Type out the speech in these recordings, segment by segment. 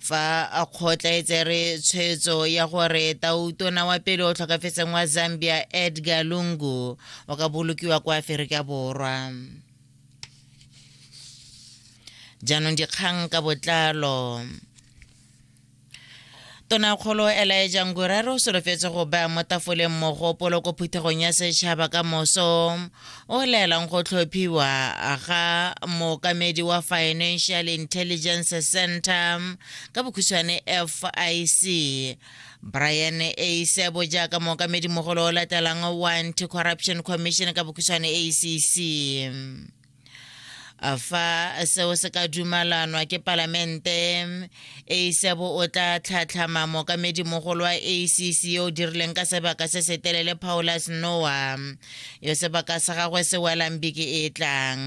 fa a kgotlaetse re tshwetso ya gore tautona wa pele o tlhokafetseng wa zambia edgar lungu o ka bolokiwa kwa aferika borwa jaanong dikgang ka botlalo Tonakgolo Elijah Nguraro o solofetse go baya mo tafoleng mogopolo ko phuthegong ya setšhaba ka moso o laelang go tlhophiwa ga mookamedi wa Financial Intelligence Center ka bokhutshwane FIC Brian Eisebo jaaka mookamedi mogolo o latelang wa Anti-Corruption Commission ka bokhutshwane ACC. fa seo se ka dumalanwa ke palamente asebo o tla tlhatlhama mookamedi mogolo wa acc yo o dirileng ka sebaka se se telele paulus noa yo sebaka sa gagwe se welang beke e tlang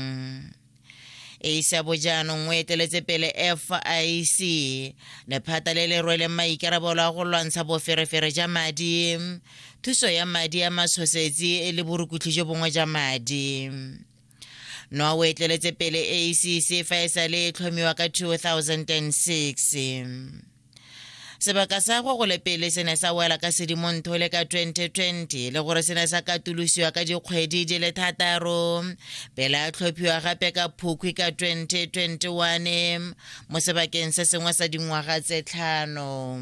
asebo jaanong o eteletse pele fic lephata le le rweleng maikarabelo a go lwantsha boferefere ja madi thuso ya madi ya matshosetsi le borukutlhi jo bongwe ja madi noa o etleletse pele acc fa e sa le e tlhomiwa ka 2006 sebaka sa go gole pele se ne sa wela ka sedimontho le ka 2020 le gore se ne sa katolosiwa ka dikgwedi di le thataro pele a tlhophiwa gape ka phukhwi ka 2021 mo sebakeng se sengwe sa dingwaga tse tlhano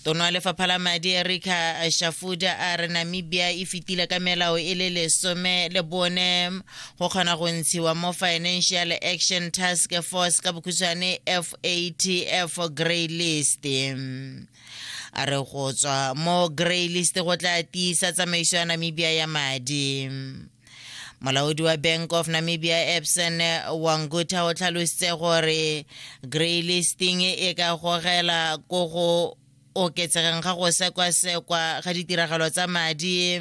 tono ya lefapha la madi erika shafuda a re namibia e fetile ka melao e le lesome le bone go kgona go ntshiwa mo financial action task force ka bokhutshwane fatf grey list a re go tswa mo grey list go tla tiisa tsamaiso ya namibia ya madi molaodi wa bank of namibia epson wangutha o tlhalositse gore grey listing e ka gogela ko go oketsegeng ga go sekwasekwa ga ditiragalo tsa madi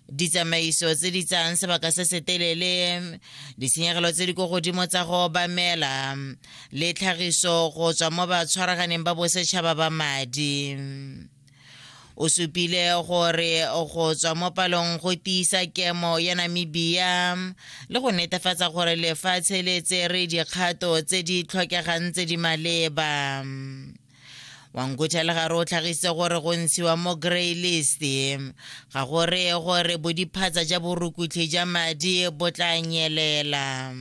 ditsamaiso tse di tsayang sebaka se se telele ditshenyegelo tse di ko godimo tsa go obamela le tlhagiso go tswa mo batshwaraganeng ba bosetšhaba ba madi o supile gore go tswa mo palong go tiisa kemo ya namibia le go netefatsa gore lefatshe le tsere dikgato tse di tlhokegang tse di maleba wangutha le gare o tlhagisitse gore go ntshiwa mo grey list ga go reye gore bodiphatsa ja borukutlhi ja madi bo tla nyelela